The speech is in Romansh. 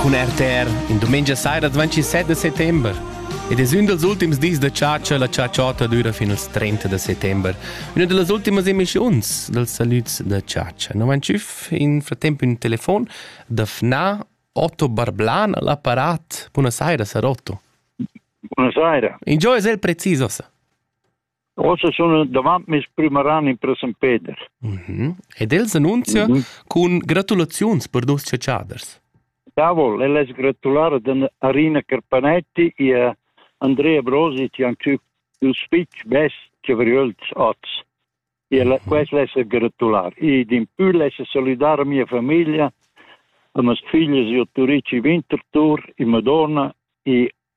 Cun RTR, in dumengia saira 27 de settember. Ed es ün dals ultims dis da chatscha, la chatschotta düra fin als 30 de settember. Üna da las ultimas emischiuns dels salüds da chatscha. No vain tschüf in fratemp ün telefon da FNA Otto Barblan all'apparat. Buona saira, sar Otto. Buona saira. Ingio es el precis ossa? Ossa sun davant meis prüm ran in Presempeder. Mm -hmm. Ed el s'annunzia mm -hmm. cun gratulaziuns per duos chatschaders. Davol, el es gratular ad Arina Carpanetti e a Andrea Brosit e anche il spitch best che vriölts oz. E mhm. quest l'essa gratular. E din pü l'essa saludar a mia famiglia, a mes figlies e a Turici Winterthur, e Madonna e